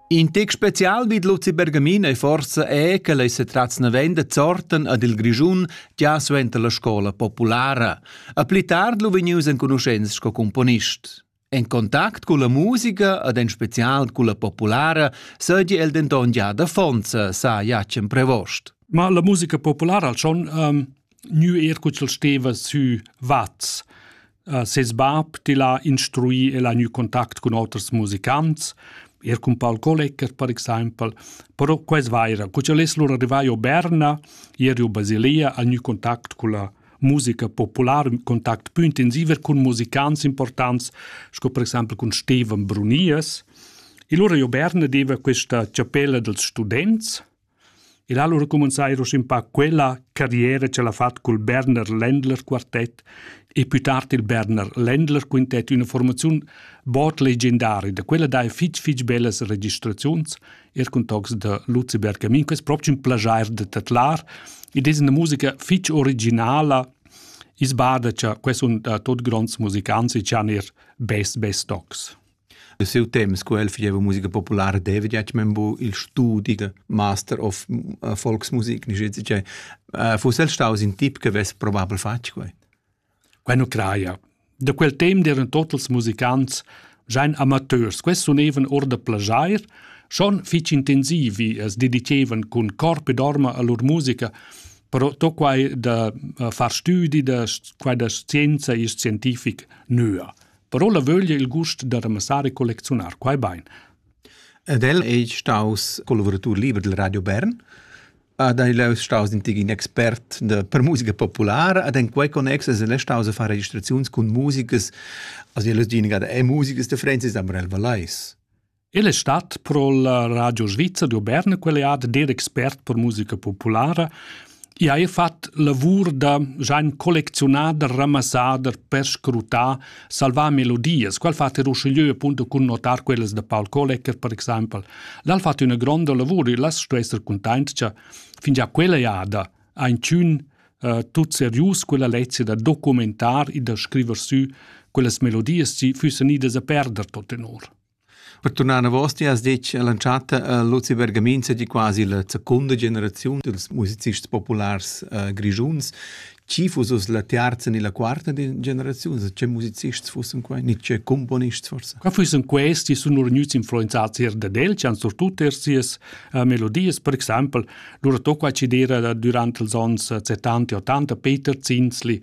In tec special vid Luzi Bergamin ei forsa è che lei se tratz navenda zorten ad il Grischun già suenter la scola populara. A pli tard lu vegnius en conoscenza sco componist. En contact con la musica ed en special con la populara seigi el denton gia da Fonza, sa Jacen Prevost. Ma la musica populara al schon um, gnü eir cun ch'el steva sü Vaz. Uh, ses bap til ha instrui e l'ha gnü contact cun oters musicants, eir cun Paul Kollecker per exaimpel, però quai es vaira. Cu ch'el es lura rivà jo Berna, ier jo Basilea, ha gnü contact cun la musica popular, ün contact pü intensiver cun musicants importants, sco per exaimpel cun Stevan Bruniers. E lura jo Berna deva questa chapella dels students, Igl ha lura cumanzà eir uschè ün pa quella carriera ch'el ha fat cul Berner Ländler quartett e pü tard il Berner Ländler quintet, üna fuormaziun bod legendaria. Da quella daja fich fich bellas registraziuns, eir cun tocs da Luziberg Camin. Quist propcha ün plaschair da tadlar. Id es üna musica fich originala. I's bada cha quai sun da tuot gronds musicants e cha han eir bels, bels tocs. En siu temps, co el fagevo musica populara, deva detg men bu il studi de Master of uh, Volksmusik, ni schizze che. Uh, fuss el staus in tip che vess probabel fatg quei? Quei no craia. Da quel temps eran tot els musicants giain amateurs. Quest sunevan or de plagiair, schon fitg intensivi es dedicevan cun corp e dorma a lur musica, però to quai da uh, far studi da quai da scienza e scientific nöa. però la vöglia il gust da ramassar e collecziunar quai bain. Ed el è staus collaboratur liber del Radio Bern, ad el è staus in expert de, per musica populara, ad en quei connex es el staus a far registraziuns con musikas, also wir das diejenigen, der eh musikas der Francis, aber el Valais. El es stat pro la Radio Svizra d'Auberna quell'eada d'eir expert per musica populara e haja fat lavur da Gian collecziunader, ramassader, perscrutar, salvar melodias. Qual fat er uschigliö appunto cun notar quellas da Paul Kollecker per exaimpel. L'ha fat üna gronda lavur e las sto esser cuntaint cha fingià quella eada ha inchün uh, tut serius quella lezia da documentar e da scriver sü quellas melodias chi füssen idas a perder tot tenor. Per turnar anavos ti has detg all'entschatta a Luzi Bergamin sei quasi la secunda generaziun dils musicists populars uh, grischuns. Chi fuss uss la terza ni la quarta generaziun? Che musicists fussen quei? Ni che componists forse? Qua fussen questi sun ornüts influenzati er dad el, che han surtut er sias uh, melodies. Per exempel, lur tocca ci dera durante els onns 70 e 80 Peter Zinzli,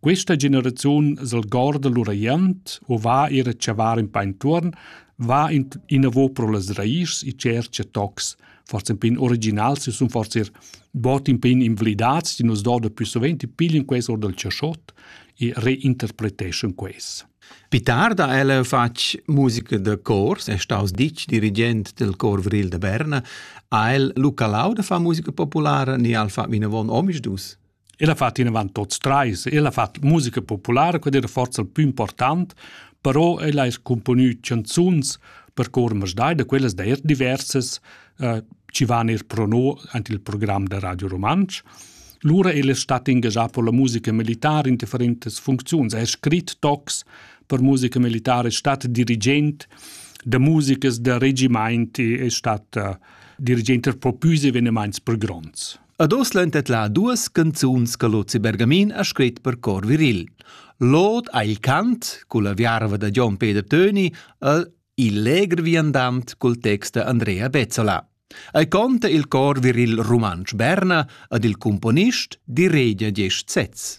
Questa generaziun s'al gorda l'urajent u va eir a chavar ün pa intuorn, va inavo pro las raís e tschercha tocs. Forsa ün pin originals e sun forsa eir bod ün pin invlidats, chi nu's doda plü suvent e piglian quels or dal chaschot e reinterpreteschan quels. Pü tard ha ella fatg musica da cors, è staus ditg dirigent del Cor Vril de Berna. Ha el lu calau da far musica populara ni al fa vinavon omisdus? El ha fatto inavant tots trais, el ha fatto musica populara, quella era forse il più important, però el ha componü canzuns per cor masdai, da quellas d'eir diversas, eh, chi van eir pro no ant il program da Radio Rumantsch. Lura el es stat ingagià per la musica militare in differentas funcziuns, ha scrit tocs per musica militare, è stat dirigent da musikas da regimaint e è stat uh, dirigent per propus evenements per gronds. Ad os l'han tetlà duas canzuns che Luzi Bergamin ha scrit per cor viril. L'od ha il cant, culla viarva da Gian Peter Töni, el il legr viandant col text da Andrea Bezzola. Ei conta il cor viril rumantsch Berna ad il cumponist di regia gest sez.